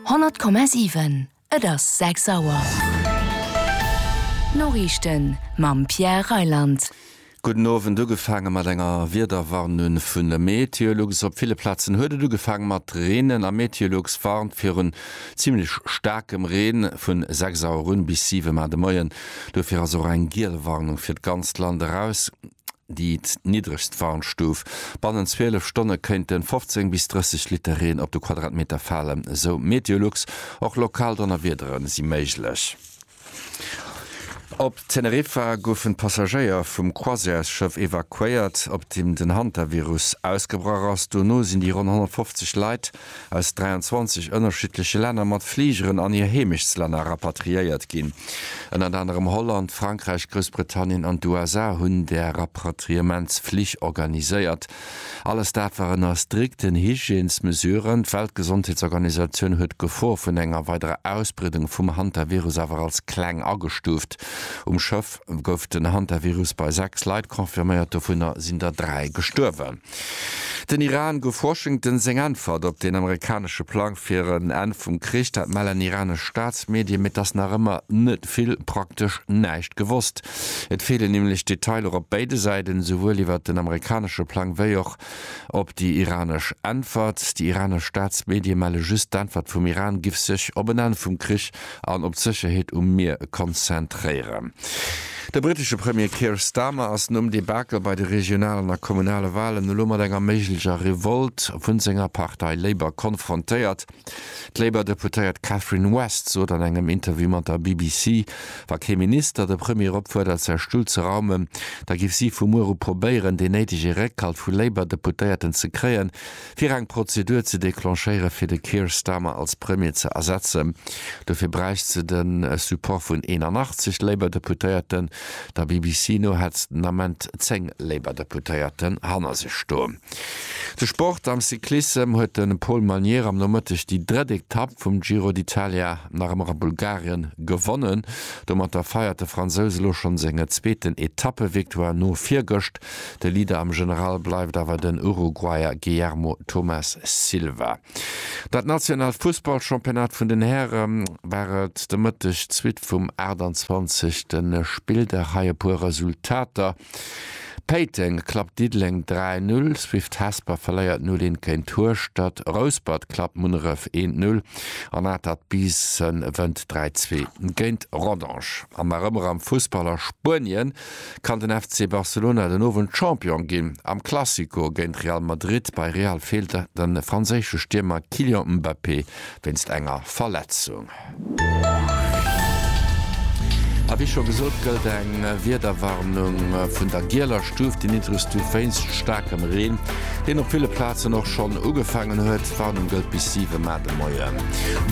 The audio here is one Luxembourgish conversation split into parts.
Honnert Komma siwen, Et ass sechs Auer. D'Noriichten mam Pierre Reyland. Gudden Owend, ugefaange mat enger Wiederwarnun vu Meteolux. Op ville Plazen huet et ugefaang mat reenen a Meteolux warnt virun zimmlech staarkem Reen vu sechs Auer un bis siwe Mar de Moien. Dofir ass och eng giel Warnung fir d'ganzt Land eraus. déi niddregst Warnstuf. Bannent 12 Stonne kéinte 15 bis 30 Liter Reen op de Quadratmeter falen, esou Meteolux. Och lokal Donnerwiedere si méiglech. Op Teneriffa goufen d'Passagéier vum Croisièresschëff evakuéiert, op deem den Hantavirus ausgebrach ass. Dono sinn déi ronn 150 Leit, aus 23 ënnerschiddleche Länner mat Fligeren an hir Heemechtslänner rapatriéiert ginn. Ënnert anerem Holland, Frankräich, Groussbritannien an d'USA hunn där Rapatriementsflich organiséiert. Alles dat war ënner strikten Hygiènesmesuren. D'Weltgesondheetsorganisatioun huet d'Gefor vun enger weiderer Ausbreedung vum Hantavirus awer als kleng agestuuft. Um Schëff gouf den Hantavirus bei sechs Leit confirméiert, dovunner sinn der dräi gestuerwen. Den Iran gouf Washington seng Äntwert op den amerikanesche Plang fir en Enn vum Krich. Dat mellen iranesch Staatsmedie, mee et ass nach ëmmer net vill, praktesch näischt gewosst. Et feelen nämlech Detailer op béide Säiten, esouwuel iwwer den amerikanesche Plang wéi och op déi iranesch Äntwert. Déi iranesch Staatsmedie melle just, d'Äntwert vum Iran giff sech op en Enn vum Krich an op d'Sécherheet um Mier konzentréieren. De brittesche Premier Keir Starmer ass nom Debakel bei de regionalen a kommunale Walen elo mat enger méiglecher Revolt vu senger Partei Labour konfrontéiert. D'Labour Deputéiert Catherine West sot an engem Interview mat der BBC, wa kee Minister de Premier opfuerdert säi Stull ze raumen, da giff si vu muer u probéieren, deen néidege Réckhalt vu Labour Deputéierten ze kréien. fir eng Prozedur ze declenchéieren, fir de Keir Starmer als Premier ze ersetzen. Dofir bräicht se de Support vun 81 Labour-Deputéierten. Der BBC no hätt se den Ament 10 Labour-Deputéierten hanner sech stoen. De Sport, Am Cyclissem huet de Paul Magnier am Nomëtteg déi drëtt Etapp vum Giro d'Italia nach ëmmer a Bulgarien gewonnen. Domatter feiert de Fransouse elo schonn seng zweeten Etappe-Victoire no virgëscht. De Leader am General bleift awer den Uruguayer Guillermo Thomas Silva. Dat nationaalt Fussballchampionnat vun den Häre war et de Mëtteg, d'Suite vum 28. Spilldag. Hei e puer Resultater, Péiteng klappt Diddeleng 3, 0, Swift Hesper verléiert 0, 1 géint Hueschtert, Rouspert klappt Munneref 1, 0 an Atert Biissen wënnt 3, 2 géint Rodange. An nach ëmmer am Fussball a Spuenien. Kann den FC Barcelona den Owend Champion ginn? Am Classico géint Real Madrid bei Real feelt de franséische Stiermer Kylian Mbappé wéinst enger Verletzung. A wéi scho gesot, gëllt eng Wiederwarnung vun der gieler Stuf, déi niddregst Stuf, wéinst staarkem Reen, deen op ville Plazen och schonn ugefaangen huet. D'Warnung gëllt bis 7 Mar de Moien.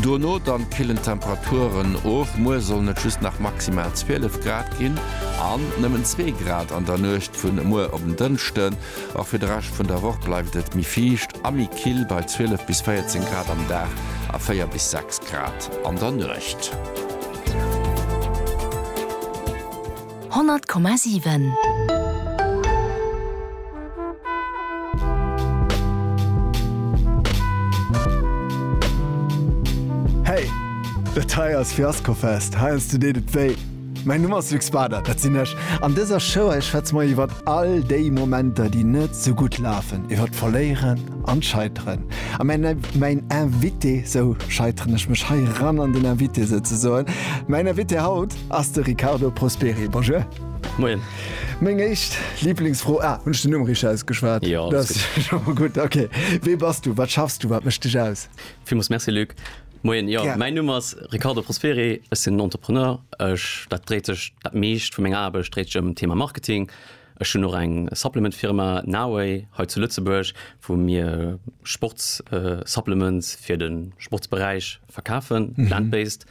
Dono dann killen d'Temperaturen of, muer sollen et just nach maximal 12 Grad. ginn an nëmmen zwee Grad an der Nuecht vu muer op en Dënschden. Och fir de Rescht vun der Woch bleift et méi fiicht a méi kill bei 12 bis 14 Grad am Dag a 4 bis 6 Grad an der Nuecht. 100,7. Hey, dat hei ass Fiaskofest, heiansdo deet et wéi. Mäin Numm ass Luc Bader, dat sinn ech. An dëser Show hei schwätze mer iwwert all déi Momenter, déi net sou gutt lafen, iwwert d'Verléieren an d'Scheiteren. A mäin Invité, sou scheiteren ech mech hei eran an den Invité souzesoen, mäin Invité haut ass de Riccardo Prosperi. Bonjour. Moien. Meng éischt Liblingsfro, ah, hunn ech den Numm richteg ausgeschwat? Jo, alles gutt. Gutt, okay. Wee bass du? Wat schaffs du? Wat mécht dech aus? Villmools Merci, Luc. Moien, jo mäin Numm ass Riccardo Prosperi, ech sinn Entrepreneur, ech dat dréit sech dat meescht vu menger Aarbecht dréit sech ëm Thema Marketing. Ech hunn och eng Supplement Firma Naway hei zu Lëtzebuerg, wou mir Sports Supplements fir de Sportsberäich verkafen, plant based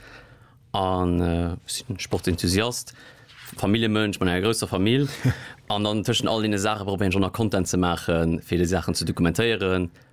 an sinn Sport Enthusiast, Familljemënsch mat enger grousser Famill an dann tëschent all deene Saache probéieren ech och nach Content ze maachen fir déi Saachen ze dokumentéieren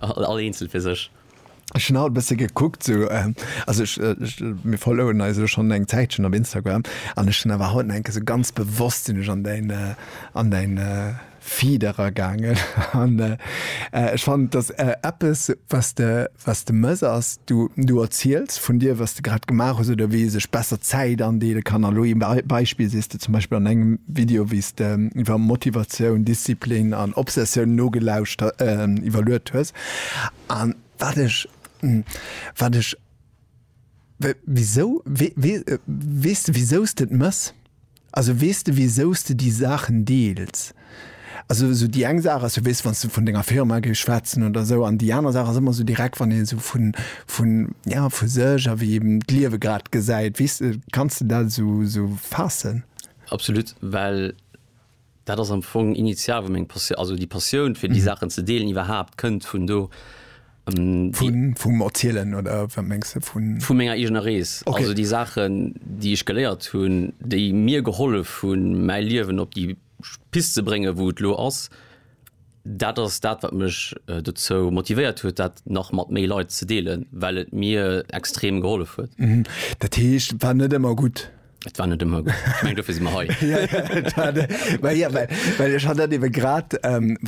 All eenzel fir sech. Ech hunn alt e bësse gekuckt, sou, also ech, ech, mir followen eis elo schonn eng Zäitchen op Instagram an ech hunn awer haut nach eng Kéier sou ganz bewosst sinn ech an däin, an däin Feed eragaangen an ech fannen, dass eppes, wat de, wat de mëss, ass, du, du erziels vun dir, wat de grad gemaach hues oder wéi ee sech besser Zäit andeele kann. A lo ee Beispill, sees de. zum Beispill an engem Video, wéi s de iwwer Motivatioun, Disziplin an Obsessioun nogelauscht, iwwerluet hues. An wat ech, wat ech, wisou, weess de wisou s de et méchs? Also weess de wisou s de déi Saachen deels? Also esou déi eng Saach ass jo, weess de, wann s de vun denger Firma géifs schwätzen oder esou an déi aner Saach ass ëmmer esou direkt, wann een esou vun, vun, ja, vu sech a wéi eben d'Liewe grad gesäit, weess de, kanns de dat esou, esou faassen? Absolut, well dat ass am Fong initial, wou meng Passioun, also déi Passioun fir déi Saachen ze deelen iwwerhaapt, kënnt vun do. Vu, vum Erzielen oder wat mengs de? Vu. Vu menger eegener Rees. Okay. Also déi Saachen, déi ech geléiert hunn, déi mir gehollef hunn, mäi Liewen op déi Piste ze bréngen, wou et elo ass. Dat ass dat, wat mech dozou motivéiert huet, dat nach mat méi Leit ze deelen, well et mir extrem gehollef huet. Dat heescht, et war net ëmmer gutt? Et war net ëmmer gutt. Ech mengen, dofir si mer hei. Jo, jo, et war net, well, jo, well, well ech hat dat ebe grad,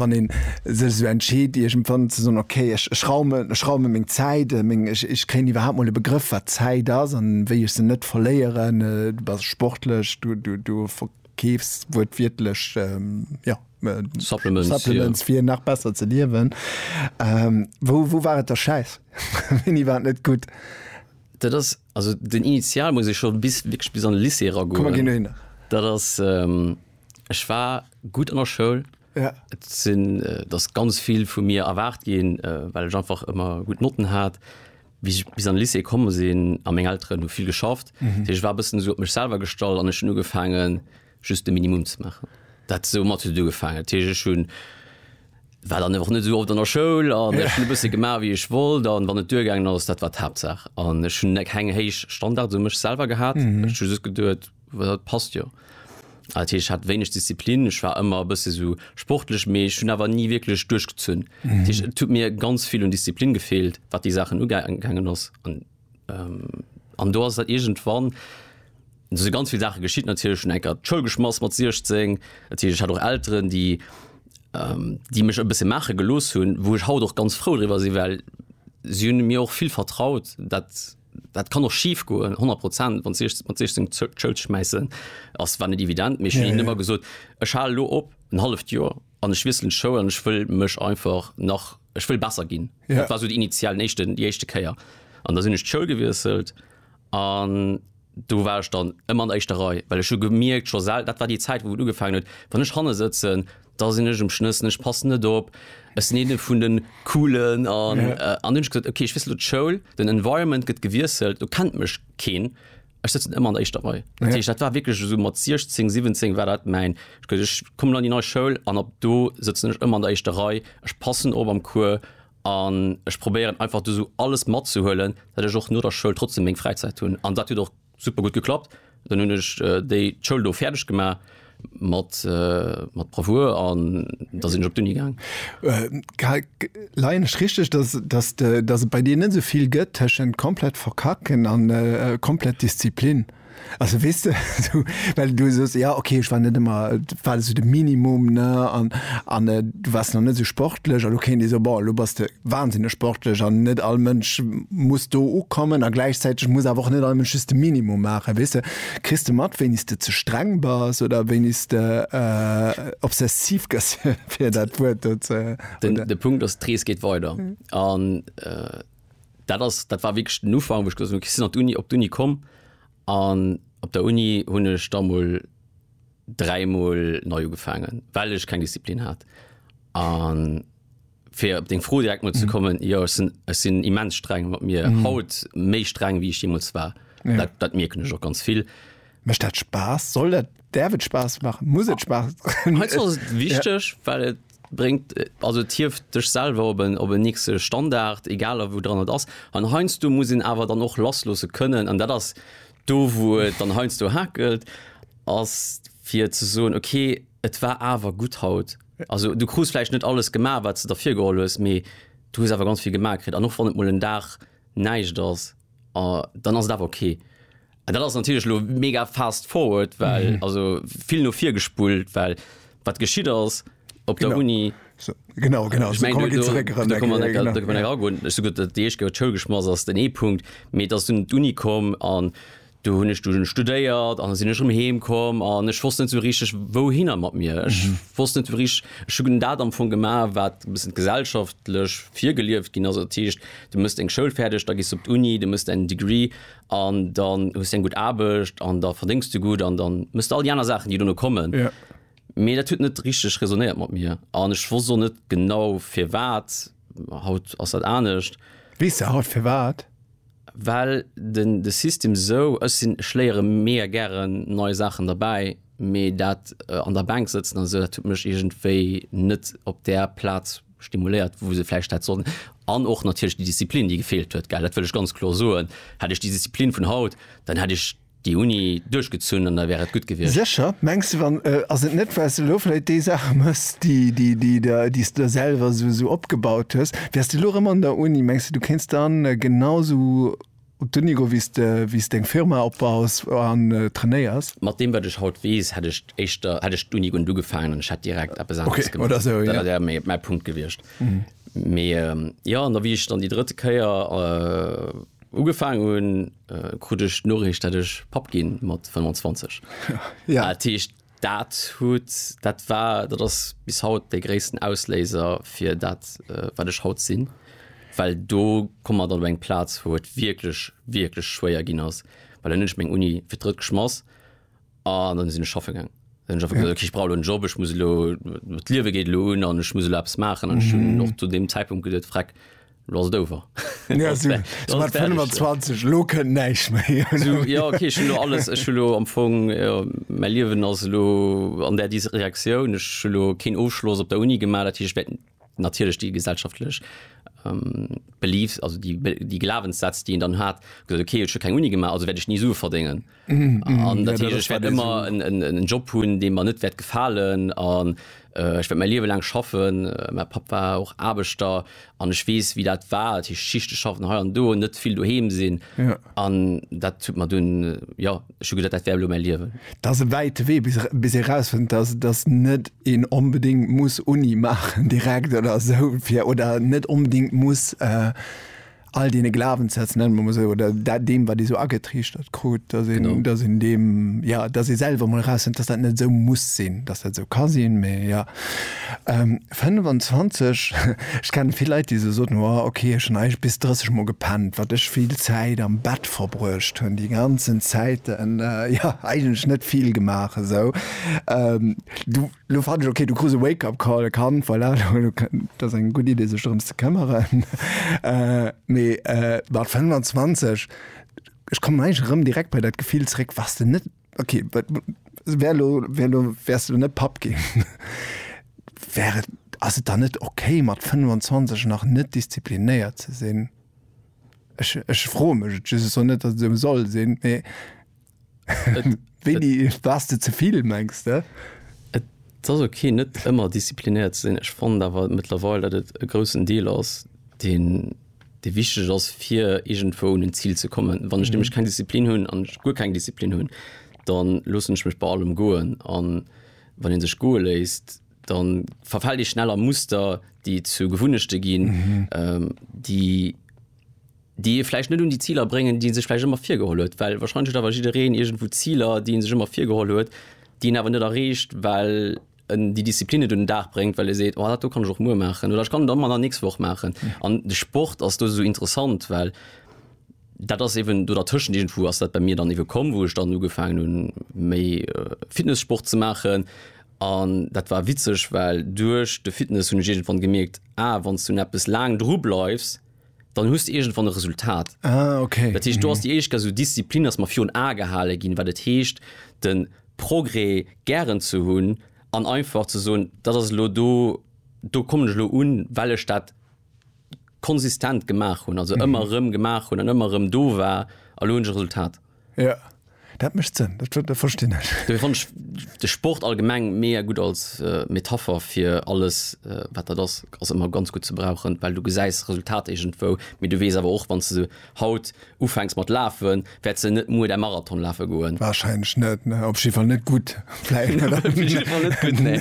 wann ee sech esou entscheet, iergendwann ze soen, okay, ech, ech raumen, ech raume meng Zäit, meng, ech, ech kréien iwwerhaapt mol e Begrëff, wat Zäit ass an wéi ech se net verléieren. Du bass sportlech, du, du, du. keefs wuertwiertlech jo Supplements, Supplements fir nach besser ze liewen. Ähm, wou, wou war et der Schäiß? Wéini war net gutt? Dat ass also den Initial muss ech schon bis wirklich bis an den Lycée ra Komm, ginn hin. Dat ass ähm, ech war gutt an der Schoul. Ja. Et sinn äh, dass ganz vill vu mir erwaart ginn, äh, well ech einfach ëmmer gutt Notten hat. wéi ech bis an de Lycée komme sinn a meng Elteren hu vill geschafft, dat heescht ech war e bëssen esou op mech selwer gestallt an ech hunn ugefaangen just de Minimum ze maachen. Dat soumat huet et ugefaangen. Dat heescht ech hunn, war dann och net esou oft an der Schoul an ech hunn e bësse gemaach wéi ech wollt an wann et duergaangen ass, dat war d'Haaptsaach an ech hunn keng héich Standarde u mech selwer gehat. Ech hu just geduet, Dat passt jo. Dat heescht, ech hat wéineg Disziplin, ech war ëmmer e bësse esou sportlech, mee ech hunn awer ni wierklech duerchgezunn. Dat heescht, et huet mir ganz vill un Disziplin gefeelt, wat déi Saachen ugaangen ass. An do ass et iergendwann, do si ganz vill Saache geschitt natierlech. Ech hunn eng Kéier d'Schoul geschmass mat 16. Dat heescht, ech hat och Elteren, déi, déi mech e bësse maache gelooss hunn, wou ech haut och ganz frou driwwer sinn, well si hunn mir och vill vertraut, dat, Dat kann och schief goen 100 Prozent wann sech mat sech seng Schëld schmeissen ass wann net evident méch ja, ja. immer gesot Ech ha lo op en halfft Joer an ech wieselen Schoul an ech wëll mech einfach nach ech wëll besser ginn ja. Dat war so die initialen echten die echte Käier an da sinn ech d'Schoul gewiesselt an du warch dann ëmmer an eichter Rei well ech scho gemierkt scho sal dat war die Zäit wou du gefaangen huet wann ech hanne sëtzen Da sinn ech um schnëssen, ech passen net op, ech sinn eene vun de Coolen. An hunn ech gesot, okay, ech wiessele d'Schoul, den Environment gëtt gewiesselt, do kennt mech keen, ech sëtzen ëmmer an der éischter Rei. Dat heescht, dat war wierklech esou mat 16, 17 war dat mäin, ech gesot, ech kommen an déi nei Schoul an ab do sëtzen ech ëmmer an der éischter Rei, ech passen op am Cours an ech probéieren einfach do esou alles matzehuelen, datt ech och no der Schoul trotzdem meng Fräizäit hunn. An dat huet och. Super gutt geklappt. Dann hunn ech déi d'Schoul do fäerdeg gemaach mat mat Bravour an da sinn ech op d'Uni gaang. Leien ech richteg, dass dass de dass et bei dir net esou vill gëtt tëschent komplett verkacken an komplett Disziplin? Also weess de esou well du soos, ja okay ech war net ëmmer war esou de Minimum ne an an du waars nach net esou sportlech a lo kéint ee soe bon elo bass de wahnsinneg sportlech an net all Mënsch muss do ukommen a gläichzäiteg muss awer och net all Mënsch just de Minimum maachen, weess de? Kriss de mat, wéini s de ze streng bass oder wéini s de obsessiv gëss, fir dat Wuert do ze. Den, de Punkt ass, d'Rees geet weider an dat ass, dat war wierklech den Ufank, wou ech gesot hunn, okay, sinn an d'Uni, op d'Uni komm an op der Uni hunn ech da mol dräimol nei ugefaangen, well ech keng Disziplin hat an. fir op deng Fro direkt mol ze kommen, jo ech sinn, ech sinn immens streng mat mir. Haut méi streng wéi ech jeemools war. Ja. Dat, dat mierken ech och ganz vill. Mécht dat Spaass? Soll dat, däerf et Spaass maachen? Muss et Spaass? Heiansdo ass et wichteg, well et bréngt, also et hieft dech selwer op en, op en nächste Standard, egal a wou dran et ass. An heiansdo muss een awer dann och lassloosse kënnen, an dat ass do wou et dann heiansdo hakelt, ass fir ze soen, okay, et war awer gutt haut. Also du krus vläicht net alles gemaach, wat s de der virgeholl hues, mee du hues awer ganz vill gemaach kritt. An och wann et mol en Dag näischt ass, dann ass et awer ok. An dat ass natierlech elo mega fast forward, well, also vill no vir gespullt, well wat geschitt ass op der Uni, ech meng do da komme mer necker eragoen, ech soe gutt, déi éischt Kéier huet d'Schoul geschmass ass den ee Punkt, mee et ass dunn d'Uni komm an Do hunn ech dunn studéiert an da sinn ech erëm heem komm an ech wosst net esou richteg, wouhinner mat mir. Ech wosst net esou richteg, ech hu dat am Fong gemaach, wat e bëssen gesellschaftlech virgelieft ginn ass. Dat heescht, du méchs deng Schoul fäerdeg, da gees de op d'Uni, du méchs däin Degree an dann hues du eng gutt Aarbecht an da verdéngs du gutt an dann méchs de all déi aner Saachen, déi dono kommen. Mee dat huet net richteg räsonéiert mat mir an ech wosst och net genau firwat. Haut ass dat anescht. Weess de haut firwat? Well den de System esou, ech sinn, ech léiere mega gären nei Saachen derbäi, mee dat an der Bänk sëtzen an esou, dat huet mech iergendwéi net op där Plaz stimuléiert, wou se vläicht hätt sollen. An och natierlech déi Disziplin, déi gefeelt huet, gell, dat wëll ech ganz kloer soen. Hätt ech déi Disziplin vun haut, dann hätt ech, déi Uni duerchgezunn an da wär et gutt gewiescht. Sécher? Mengs de, wann, ass et net well s de elo vläit déi Saache méchs, déi déi de déi s de selwer esou esou opgebaut hues, wär s de elo erëm an der Uni, mengs de du kéints dann genau esou op d'Uni goen, wéi s de wéi s deng Firma opbaus an trainéiers? Mat deem wat ech haut weess, hätt ech éischter hätt ech d'Uni gutt ugefaangen an ech hätt direkt eppes aneres gemaach. Okay, oder esou, jo. Dat wär mäi Punkt gewiescht. Mee jo, an da wéi ech dann déi drëtte Kéier ugefaangen hunn, krut ech d'Noriicht, dat ech Papp ginn mat 25. Dat heescht, dat huet, dat war, dat ass bis haut de gréissten Ausléiser fir dat, wat ech haut sinn. Well do komm mer dann op eng Plaz, wou et wierklech, wierklech schwéier ginn ass, well dann hunn ech meng Uni fir d'Drëtt geschmass. An dann sinn ech schaffe gaang. Dann hunn ech einfach gesot, okay, ech brauch elo en Job, ech muss elo, d'Liewe geet elo un an ech muss elo eppes maachen. An ech hunn och zu deem Zäitpunkt gesot, Freck, elo ass et ower. Elo ass fäerdeg. Sou mat 25, elo kënnt näischt méi. Sou, jo, okay, ech hunn elo alles, ech hunn elo am Fong, mäi Liewen ass elo an där Direktioun, ech hunn elo keen Ofschloss op der Uni gemaach, dat heescht, ech wäert natierlech déi gesellschaftlech ähm, Beliefs, also die, die Glaubenssätze, die en dann hat, gesagt, okay, ich keine Uni gemacht, also werde ich nie Sue verdingen. Mm, mm, an ja, natürlich, ich werde immer einen, einen, einen Job hun, den man net werd gefallen an äh, ich werde mein Leben lang schaffen. Äh, mein Pap war auch Arbeiter an ich wees wie dat war, ich Schichte schaffen he an do net viel doheem sinn. Ja. An dat huet mer dunn, jo, ech hu gesot, dat wär elo mäi Liewen. Et ass e wäite Wee, bis ee erausfënnt, dass dass net een onbedéngt muss Uni maachen direkt oder esou fir, oder net onbedéngt muss all deene Glawenssätz, nenne mer emol esou, oder dat, deem, wat ee esou agetriichtert krut, dass een, dass een deem, jo, dass ee selwer emol erausfënnt, dass dat net esou muss sinn, dass dat esou ka sinn, mee jo. 25? Ech kennen vill Leit déi sou soten, oh ok ech hun eigentlech bis 30 mol gepennt, wat ech vill Zäit am Bett verbruecht hun déi ganzen Zäiten, jo eigentlech net vill gemaach esou. Du lo fannen ech ok, du krus e wake up call, e Kand, voilà dat ass eng gudd Idee sech drëms ze këmmeren. Mee mat 25, ech kommen eigentlech erëm direkt bei dat Gefill zréck, wars de net, okay wär lo wär lo wärst du net Papp ginn wär et ass et dann net okay mat 25 nach net disziplinéiert ze sinn ech ech froe mech et just esou net datt et esou soll sinn mee wéini wars de zevill mengs de? Et ass okay net ëmmer disziplinéiert ze sinn ech fonnt awer mëttlerweil datt et e groussen Deel ass deen dee wichteg ass fir egentwou un en Zil ze kommen. Wann ech mhm. nämlech keng Disziplin hunn an guer keng Disziplin hunn, dann lossen ech mech bei allem goen an wann en sech goe léist, dann verfällt ich schneller Muster, die zu Gewunnechte ginn, mhm. ähm, die die vielleicht net un die Zieler bringen, die sich vielleicht immer vier geholt huet, weil wahrscheinlich da war jiin irgendwo Zieler, die sich immer vier geholt huet, die aber net errecht, weil en déi Disziplin net un den Dag bréngt, well e seet, oh dat do kann ech och muer maachen oder ech kann et dann an der nächst Woch maachen. An de Sport ass do esou interessant, well dat ass eeben do dertëschent. Iergendwou ass dat bei mir dann eebe komm, wou ech dann ugefaangen hunn, méi Fitnessport ze maachen. An dat war witzeg, well duerch de Fitness hunn ech iergendwann gemierkt, ah wann s du un eppes laang dru bleifs, dann hues de iergendwann e Resultat. Ah, okay. Dat heescht, do ass déi éischt Cas, esou Disziplin ass mer virun Ae gehale ginn, wat et heescht, de Progrès gären ze hunn an einfach ze soen, dat ass elo do, do kommen ech elo un, well ech dat konsistent gemaach hunn, also ëmmer erëm gemaach hunn an ëmmer erëm do war a lo hunn ech e Resultat. Ja dat mécht Sënn, dat verstinn ech. Dobäi fannen ech de Sport allgemeng mega gutt als Metapher fir alles wat dat ass, ass ëmmer ganz gutt ze brauchen, well du gesäis d'Resultat iergendwou, mee du weess awer och wann s de haut ufänks mat lafen, wäerts de net muer däi Marathon lafe goen. Warscheinlech net, ne, op jidde Fall net gutt vläicht. Op jidde Fall net gutt, nee.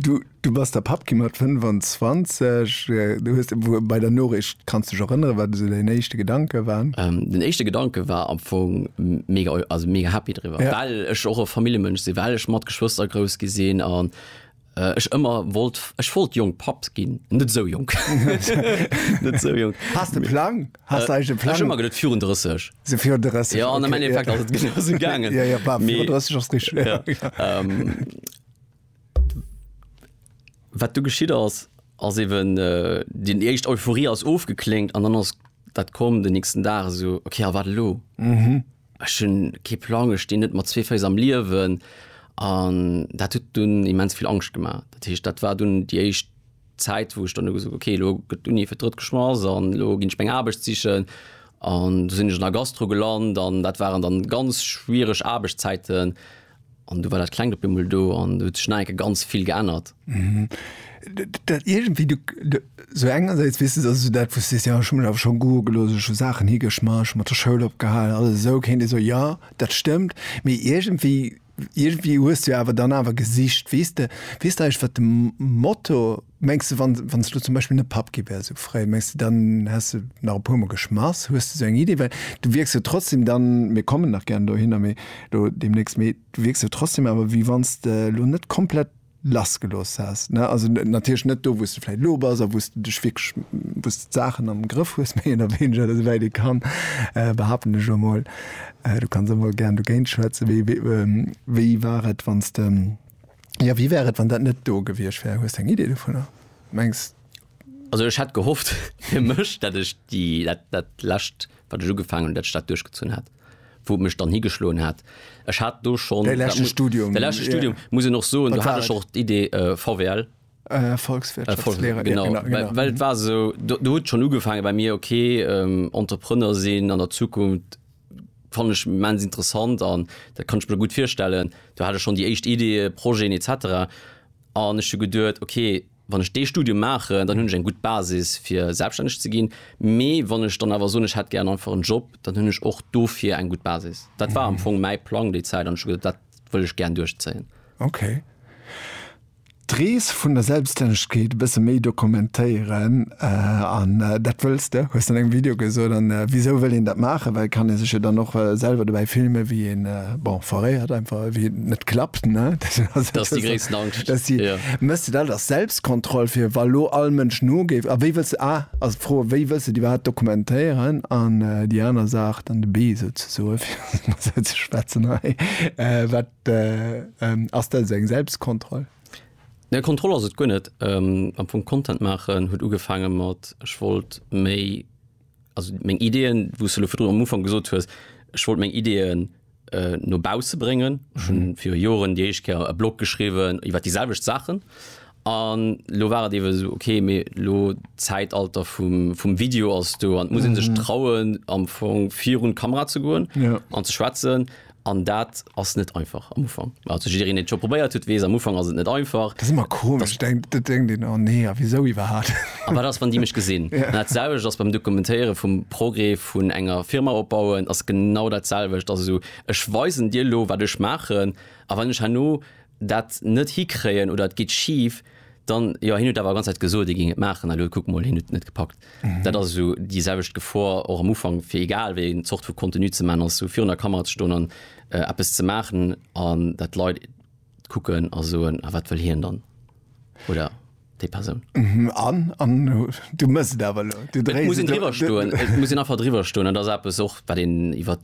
Du. Du bass da Papp gi mat 25. Du hues bei der Noriicht, kanns dech erënneren, wat esou däin éischte Gedanke war? Den éischte Gedanke war am Fong mega, also mega happy driwwer, well ech och e Familljemënsch sinn, well ech mat Geschwëster grouss gi sinn an ech ëmmer wollt, ech wollt jonk Papp ginn. Net esou jonk, net esou jonk. Has de Plang? Has de eigentlech e Plang? Ech hu ëmmer geduet virun 30. Sou virun 30? Jo, an am Endeffekt ass et genau esou gaangen. Jo, jo, Papp, virun 30 ass richteg. Wat du geschitt ass, ass eben deen éischt Euphorie ass ofgekléngt an dann ass dat komm den nächsten Dag esou, okay a wat elo? Ech hunn kee Plang, ech stinn net mat zwee Féiss am Liewen an dat huet dunn immens vill Angscht gemaach. Dat heescht, dat war dunn déi éischt Zäit, wou ech dann hu gesot, okay elo gëtt d'Uni fir d'Drëtt geschmass an elo ginn ech meng Aarbecht sichen an du sinn ech an der Gastro gelant an dat waren dann ganz schwiereg Aarbechtszäiten. An du war dat klengt op emol do an du sech neke ganz vill geännert. Mhm. Dat irgendwie du, du so engerseits wis weißt du, also dat wusste ja schon mal schon go gelose schon Sachen higeschmarsch mat der Schoul opgehalen also so kennt dir so ja dat stimmt mir irgendwie irgendwie hues du awer dann awer gesicht wis weißt du wis weißt du wat dem Motto Mengs de wann wann s du zum Beispill net Papp gi wär sou fréi, mengs de dann häss de nach e puer mol geschmass? Hues de sou eng Idee? Well du wierks jo trotzdem dann, mir kommen nach gären dohinner, mee elo deemnächst, mee du wierks jo trotzdem awer wéi wann s de elo net komplett lass gelooss häss, ne? Also natierlech net do wou s de vläit elo bass a wou s de dech wierklech, wou s de d'Saachen am Grëff hues, méi oder wéineger esou wäit ee kann, behaapten ech elo mol. Du kanns och mol gären dogéint schwätzen, mee wéi war et wann s de, Ja wéi wär et wann dat net do gewiescht wär? Hues de eng Idee dovunner? Mengs Also ech hat gehofft fir mech, dat ech déi dat, dat läscht wat ech ugefaangen hunn, dat ech dat duerchgezunn hat, wou et mech dann higeschloen hat. Ech hat do schonn Däi leschte Studium, däi leschte Studium yeah. muss een och soen, do hat ech och d'Idee äh, VWL. Äh, Volkswirtschaftslehrer, äh, genau, genau, genau. Well et war so, do, do huet schonn ugefaange bei mir, okay, ähm, Entrepreneur sinn an der Zukunft fand ech immens interessant an dat kann ich mir gut virstellen. Du hatte schon die echt Idee, Projeten etc. An ech hu geduert okay, wann ech dee Studium maachen, dann hunn ech eng gutt Basis fir selbststänneg ze ginn. Mee wann ech dann awer soen, ech hätt gären einfach en Job, dann hunn ech och dofir eng gutt Basis. Dat war am Fong mäi Plang déi Zäit an ech hu gesot, dat wëll ech gären duerchzéien. Okay. D'Rees vun der Selbstännegkeet e bësse méi dokumentéieren. An dat wëlls de, hues de an engem Video gesot. An wisou wëll een dat maachen? Well kann ee sech jo dann och selwer dobäi filmen, wéi een, bon, foréiert einfach, wéi et net klappt, ne? Dat ass jo déi gréissten Angscht. Méchs de dat als Selbstkontroll, fir wa lo all Mënsch nogéif? A wéi wëlls de, ah, ass d'Fro, wéi wëlls de déi iwwerhaapt dokumentéieren? An déi aner Saach, dann de Bee esou ze soen, fir mat esou ze schwätzen hei, wat. Da ass dat esou eng Selbstkontroll? Nee, Kontroll ass et guer net. Am Fong Content maachen huet ugefaange mat, ech wollt méi, also meng Ideeën, wou s de elo virdrun am Ufank gesot hues, ech wollt meng Ideeën no bausse bréngen. Ech hu viru Joren déi éischt Kéier e Blog geschriwwen iwwer déi selwecht Saachen An lo war et ewe esou, ok, mee lo d'Zäitalter vum, vum Video ass do an et muss ee sech trauen am Fong virun d'Kamera ze goen Ja. an ze schwätzen. An dat ass net einfach am Ufank. Also jiddereen, deen et scho probéiert huet, weess, am Ufank ass et net einfach. Dat ass ëmmer komesch, denkt, dat denkt een, oh nee, a wisou iwwerhaapt? A wat ass, wann déi mech gesinn? Ja. An dat selwecht ass beim Dokumentéiere vum Progrès vun enger Firma opbauen, ass genau dat selwecht. Ass esou, ech weisen dir lo, wat ech maachen, a wann ech herno dat net hikréien oder et geet schif, dann, jo hien huet awer ganz Zäit gesot hie géing et maachen a lo kuck mol hien huet et net gepackt. Dat ass esou déi selwecht Gefor och am Ufank fir egal wéi eng Zort vu Contenu ze man ass esou virun der Kamera ze stoen an eppes ze maachen an dat d'Leit kucken a soen a wat wëll hien dann oder déi Persoun. An an du mëss et awer lo, du Et dréis muss een et driwwer stoen, et muss een einfach driwwer stoen an dat ass eppes och wat een iwwert.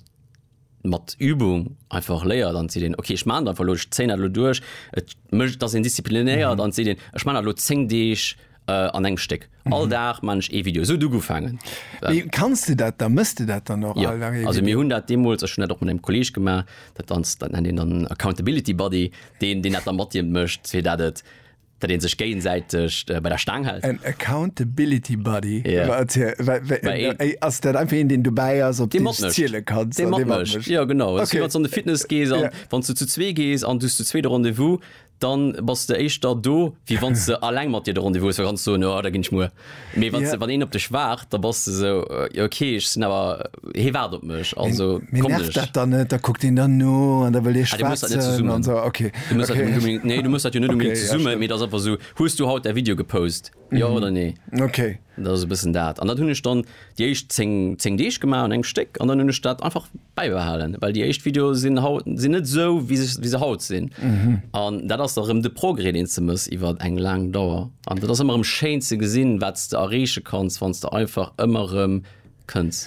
mat Übung einfach léiert an seet een ok ech maan dat einfach elo, ech zéien dat elo duerch, et mécht, et ass een disziplinéiert an et seet een ech maan dat elo 10 Deeg an engem Stéck, all Dag maan ech ee Video, esou huet et ugefaangen. Mee kanns de dat da, mëss de dat dann och all Dag ee Video? Jo, also mir hunn dat deemools, ech hunn dat och mat engem Kolleeg gemaach, dat ass, dat nennt een dann accountability buddy, deen deen dat da mat dir mécht, fir dat et Dat een sech géiensäiteg bei der Staang hält. En Accountability Buddy? Ass dat einfach een, deen dobäi ass, op deen s du ziele kanns? Dee mat mécht, jo genau. Ass wéi wann s du an de Fitness gees an wann s du zu zwee gees an du hues zu zwee de Rendez-vous, da bass de éischter do, wéi wann s de alleng mat dir de Rendez-vous hues, well da kanns du soen, jo da ginn ech muer. Mee wann, yeah. wann een op dech waart, da bass du so ja, okay ech sinn awer hee waart op mech also nervt dat dann net, da kuckt een dann no an da wëll ee schwaatzen so, okay, okay. Nee du muss dat jo net okay, zesummen, ja, mee dat einfach so hues du haut der Video gepost mm. ja mhm. oder nee okay. Dat ass e bëssen dat an dat hunn ech dann Déi éischt 10 Deeg gemaach an eng Stéck an dann hunn ech dat einfach Bäibehalen, well déi éischt Videoe sinn haut sinn net esou wéi sech wéi se haut sinn an dat ass da erëm de Progrès deen s de mëss iwwer eng laang Dauer an dat ass ëmmer erëm schéin ze gesinn wat s de erreeche kanns wann s de einfach ëmmer erëm kënns.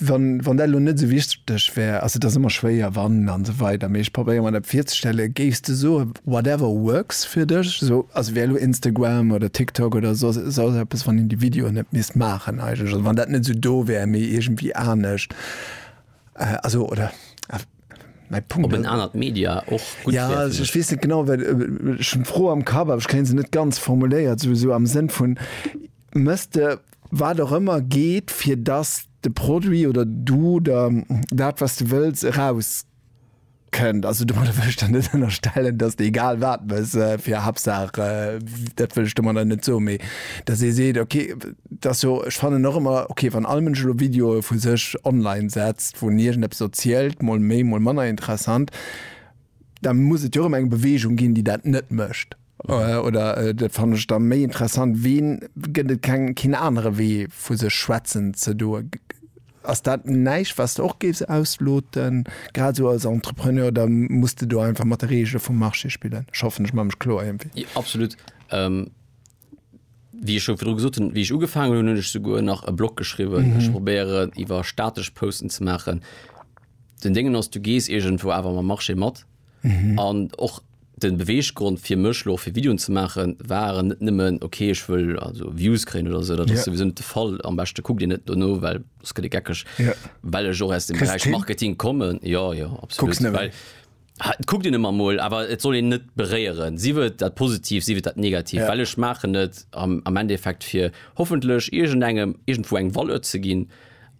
Wann wann dat elo net esou wichteg wär, ass et ass ëmmer schwéier wann an esou weider mee ech probéiere mer dat virzestellen, géifs de soe whatever works fir dech esou ass wär elo Instagram oder TikTok oder soss soss eppes wann een déi Videoen net misst maachen eigentlech also wann dat net esou do wär mee iergendwéi anescht Äh, also, oder, äh, mein Punkt. Ob en anert Media och gutt ja, wäert. Ja, ech weess net genau, well äh, ech hun Fro am Kapp, awer ech kréien se net ganz formuléiert, sou, sou am Sënn vun, Mëste wat och ëmmer geet, fir dass de Produit oder du oder dat, wat s de wëlls, eraus. kënnt. Also domadder wëll ech der net ënnerstellen, datt ee egal wat mëss fir Haaptsaach, dat wëll ech domadder net soen, mee datt ee seet, okay, datt jo, ech fannen och ëmmer, okay, wann all Mënsch elo Videoe vu sech online setzt, wou en iergendeppes erzielt, mol méi, mol manner interessant, da muss et jo och ëmmer eng Beweegung ginn, déi dat net mécht. Oder dat fannen ech da méi interessant, ween gëtt et keng keen anere Wee vu sech schwätzen ze doe? Ass dat näischt wat s de och géifs ausloten, grad esou als Entrepreneur, oder muss de do einfach mat de Reegele vum Marché spillen? Ech hoffen ech man mech kloer iergendwéi. Jo absolut. Wéi ech scho virdru gesot hunn, wéi ech ugefaangen hunn, hunn ech souguer nach e Blog geschriwwen. Ech probéieren iwwer statesch Posten ze maachen. Den Déngen ass du gees iergendwou awer mam Marché mat. mhm. an och den Beweggrund fir mech lo fir Videoen ze machen waren net nëmmen okay ich will also Views kre oder so dat ja. sowieso de Fall am beste guck dir net no well das gët geckeg ja. well ech och aus dem Christine? Bereich Marketing kommen ja ja absolut guck dir immer mal aber et soll ihn net bereieren sie wird dat positiv sie wird dat negativ ja. weil ich machen net am, am Endeffekt fir hoffentlich irgend engem irgendwo eng Wolle ze ginn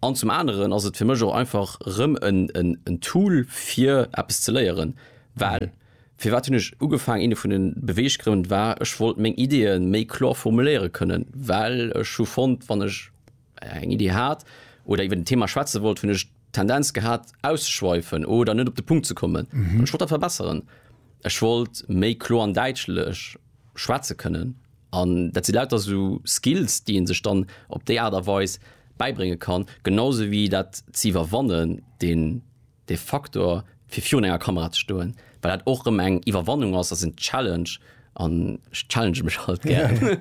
An zum aneren ass et fir mech och einfach erëm en Tool fir eppes ze léieren, well firwat hunn ech ugefaangen? Eene vun de Beweeggrënn war, ech wollt meng Ideeë méi kloer formuléiere kënnen, well ech hu fonnt, wann ech eng Idee hat oder iwwer en Thema schwätze wollt, hunn ech d'Tendenz gehat auszeschweifen oder net op de Punkt ze kommen. An ech wollt dat verbesseren, ech wollt méi kloer an däitlech schwätze kënnen. An dat si lauter esou Skills, déi ee sech dann op déi Aart a Weis bäibrénge kann, genau esou wéi dat ze iwwerwannen, deen dee Faktor fir virun enger Kamera ze stoen, well dat och erëm eng Iwwerwannung ass, dat ass en Challenge an ech challenge mech halt gären.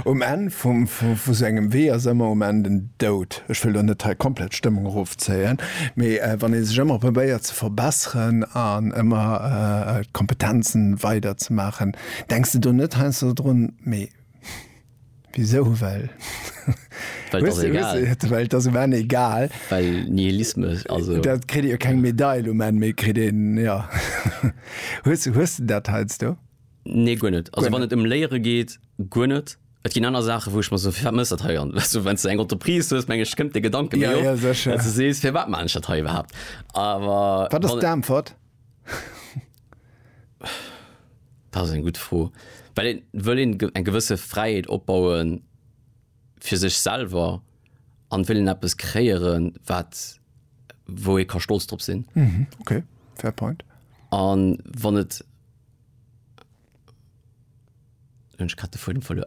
Um Enn vum vu sou engem Wee ass ëmmer um Enn den Doud. Ech wëll elo net hei komplett d'Stëmmung erofzéien, mee wann ee sech ëmmer probéiert ze verbesseren an ëmmer d'Kompetenzen weiderzemaachen, Denks de do net heiansdo drun, mee wisou? Well Well et ass egal. Well et ass um Enn egal. Well Nihilismus, also. Da kritt ee jo keng Medail um Enn, mee kritt een, jo. Hues, hues de dat heiansdo? Nee, guer net. Also wann et ëm Léiere geet, guer net. Et ginn aner Saachen, wou ech mer sou, firwat méchs dat hei? An weißt du, wann s de eng Entreprise hues, meng ech, kënnt de Gedanke méi op, datt s de sees, firwat maachen ech dat hei iwwerhaapt? Awer. Wat ass d'Äntwert? Dat ass eng gutt Fro. Well een wëll een eng gewësse Fräiheet opbaue fir sech selwer an wëll een eppes kréiere wat wou ee ka stolz drop sinn. Ok, fair point. An wann et. Hun ech grad de Fuedem verluer.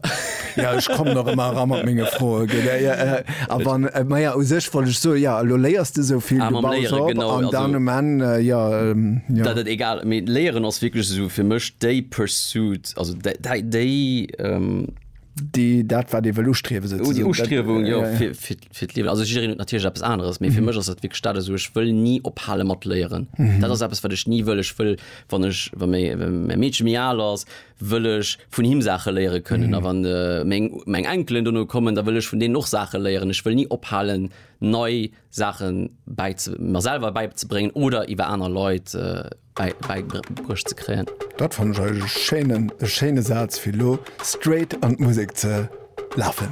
Ja, ech komme nach ëmmer eran mat menge Froen, gell, ja, ja, äh, a wann, äh, ma ja, u sech wollt ech soen, ja, elo léiers du esou vill, Ah, du mam baus Léieren, op genau, an also- dann um Enn, äh, ja, ähm, ja. Dat et egal, mee Léieren ass wierklech esou fir mech déi Pursuit, also dä- däi, déi, ähm, Déi, dat wat ee wëll ustriewen oh, sozusagen. déi Ustriewung, Dat- jo, ja, ja. fir, fir, fir d'Liewen. Also jiddereen huet natierlech eppes aneres, mee fir mech ass dat wierklech dat esou, ech wëll ni ophale mat Léieren. Dat ass eppes, wat ech ni wëll. Ech wëll, wann ech, wann méi, wenn mäi Meedche méi al ass, wëll ech vun him Saache léiere kënnen. A wann meng meng Enkelen dono kommen, da wëll ech vun deenen och Saache léieren. Ech wëll ni ophalen, nei Saache bäi ze mer selwer bäizebréngen oder iwwer aner Leit bäi bäibruecht ze kréien. Dat fannen ech e schéinen e schéine Saz fir lo straight an d'Musek ze lafen.